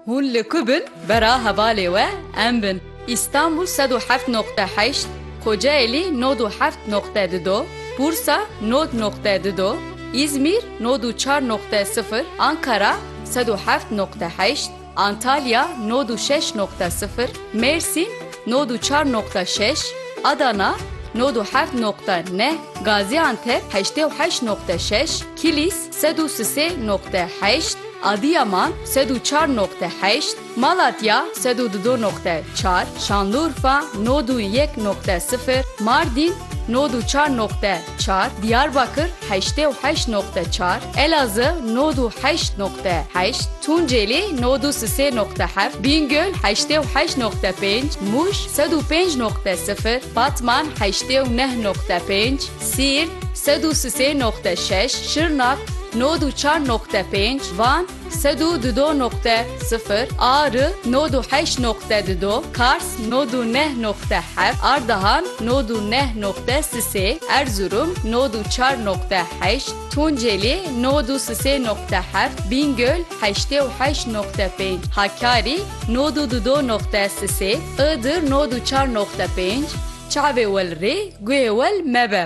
Hûn li ku bin bera hevalê we em bin Îstanbul sed û heft noqte heşt, Kocaelî nod û heft noqte di do, Bursa nod noqte di do, Îzmîr nod û çar noqte sifir, Ankara sed û heft noqte heşt, Antalya nod û şeş noqte sifir, Mêrsîn nod û çar noqte şeş, Adana nod û heft noqte neh, Gazîantep heştê û heşt noqte şeş, Kilîs, Sed û sisê noqte heşt, Adiyaman, sed û çar noqte heşt, Malatya, sed û dido noqte çar, Şanlurfa, nod û yek noqte sifir, Mardîn, nod û çar noqte çar, Diyarbakir, heştê û heşt noqte çar, Elazığ, nod û heşt noqte heşt, Tunceli, nod û sisê noqte heft, Bîngöl, heştê û heşt noqte pênc, Mûş, sed û pênc noqte sifir, Batman, heştê û neh noqte pênc, Siirt, sed û sisê noqte şeş, Şirnak, nod û çar noqte pênc, Van, sed û dudo noqte sifir, Ari, nod û heşt noqte dudo, Kars, nod û neh noqte heft, Ardahan, nod û neh noqte sisê, Erzurum, nod û çar noqte heşt, Tunceli, nod û sisê noqte heft, Bîngöl, heştê û heşt noqte pênc, Hakkari, nod û dudo noqte sisê, Iğdır, nod û çar noqte pênc, Çavê wel rê, guhê wel mebe.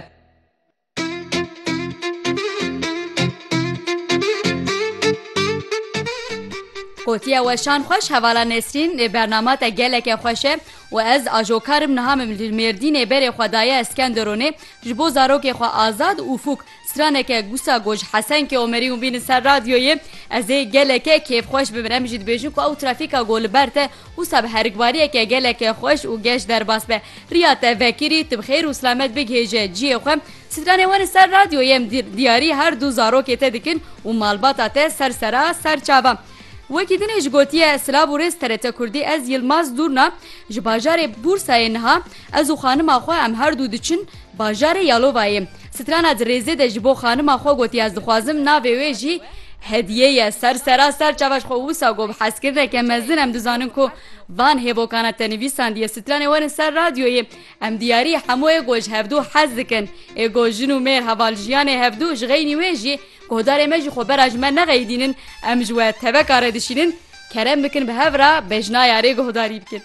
Gotiya weşan xweş hevala Nesrîn ê bernama te geleke xweş e û ez ajokar im niha min li Mêrdînê berê xwe daye Eskenderonê ji bo zarokê xwe Azad û Fûk Straneke Gusa Goj Hesenke Omerî hûn bînin ser radyoyê. Ez ê geleke kêfxweş bibin. Em jî dibêjin ku ew trafîka ku li ber te wisa bi herikbariyeke geleke xweş û geş derbas be. Riya te vekirî, tu bi xêr û silamet bigihêje cihê xwe. Stranê we li ser radyoyê em diyarî her du zarokê te dikin û malbata te ser sera ser çavan. Wekî dinê ji gotiye Silav û rêz TRT Kurdî Ez Yilmaz Dûrna ji bajarê Bûrsayê niha ez û xanima xwe em her du diçin Bajarê Yalovayê strana di rêzê de ji bo xanima xwe gotiye ez dixwazim navê wê jî Hedîye ye. Ser sera ser çavaj xwe wisa got bi hezkirineke mezin em dizanin ku van hêvokana te nivîsandiye stranê werin ser radyoyê em diyarî hemû ê ku ji hevdu hez dikin ê ku jin û mêr heval jiyanê hevdu ji xeynî wê jî guhdarê me jî xwe bera ji me nexeyidînin em ji we teveka re dişînin kerem bikin bi hev re bejna yarê guhdarî bikin.